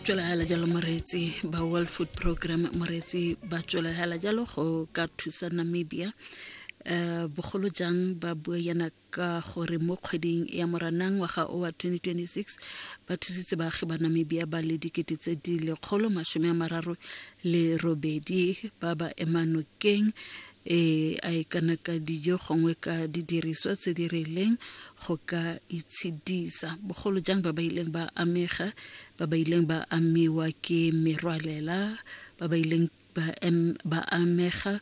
tswelagala jalo moreetsi ba world food program moreetsi ba tswelagala jalo go ka thusa namibia um bogolo jang ba bua yana ka gore mo kgweding ya moranang ngwaga o wa 2026 ba thusitse baagi ba namibia ba le dikete tse di lekgolo masome a mararo le robedi ba ba emanokeng e a e kana ka dijo gongwe ka didiriswa tse di rileng go ka itshedisa bogolo jang ba ba ileng ba amega ba ba ileng ba amiwa ke merwalela ba ba ileng ba, em, ba amega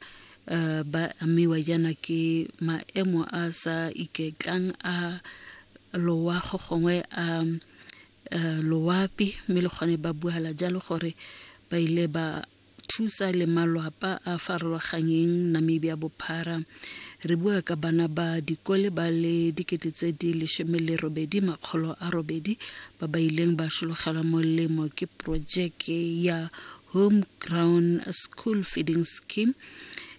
uh, ba amiwa jaana ke maemo a sa iketlang a loago gongwe a um, uh, loapi mme le gone ba buala jalo gore ba ile ba thusa le malwapa a farologanyeng Namibia bophara. Re bua ka bana ba dikole ba le dikete tse di lesome le robedi makgolo a robedi ba ba ileng ba sologela molemo ke projeke ya home ground school feeding scheme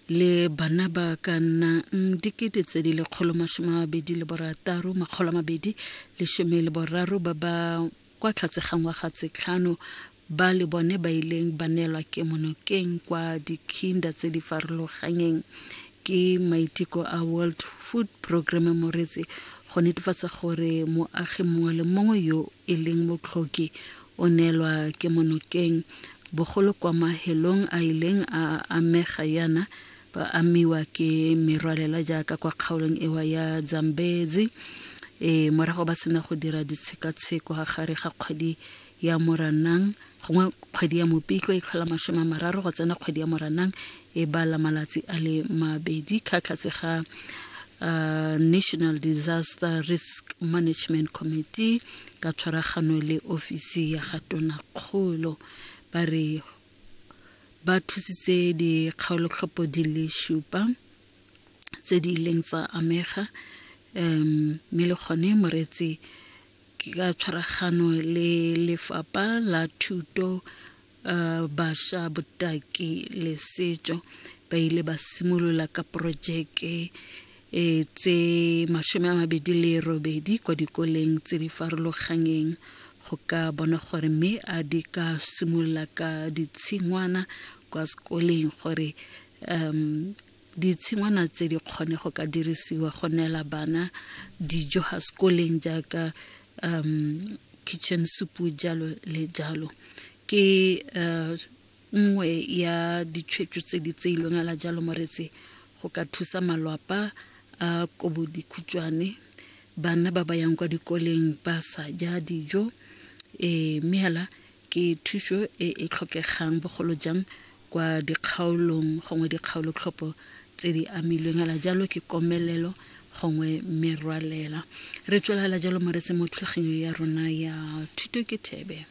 le bana ba ka nnang dikete tse di lekgolo masome a mabedi le borataro makgolo a mabedi lesome le boraro ba ba kwa tlhatse ga ngwaga tse tlhano ba le bone ba ileng ba neelwa kemonokeng kwa dikhinda tse di farologanyeng ke maiteko a world food programme moretse go netefatsa gore moagi mongwe le mongwe yo e leng motlhoki o neelwa kemonokeng bogolo kwa mahelong a ileng a amega yana ba amiwa ke merwalela jaaka kwa kgaolong ewa ya dzambezi e morago ba sena go dira ditshekatsheko ga gare ga kgwedi ya moranang gongwe kgwedi ya mopitlo e tlhola masome a mararo go tsena kgwedi ya moranang e bala malatsi a le mabedi ka tlhatse ga uh, national disaster risk management committee ka tshwaragano le ofisi ya ga tonakgolo ba re ba thusitse dikgaolotlhopo di le šupa tse di ileng tsa amega um mme le gone moreetsi ka tshwaragano le lefapha la thuto uh, basha botaki le setso ba ile ba simolola ka porojeke e tse masome a mabedi le robedi kwa dikoleng tse di farologanyeng go ka bona gore mme a di ka simolola ka ditshingwana kwa sekoleng gore um ditshingwana tse di kgone go ka dirisiwa go neela bana dijo ga sekoleng jaaka um kitchen soup jalo le jalo ke uh, nngwe ya ditshwetso tse di tseilweng ala jalo moretse go ka thusa malwapa a kobo dikhutšwane bana ba ba yang kwa dikoleng ba sa ja dijo um mme hela ke thuso e e tlhokegang bogolo jang kwa dikgaolong gongwe dikgaolotlhopho tse di amilweng hela jalo ke komelelo gongwe merwalela re tswelela jalo moretse mo thulaganyong ya rona ya thuto ke thebe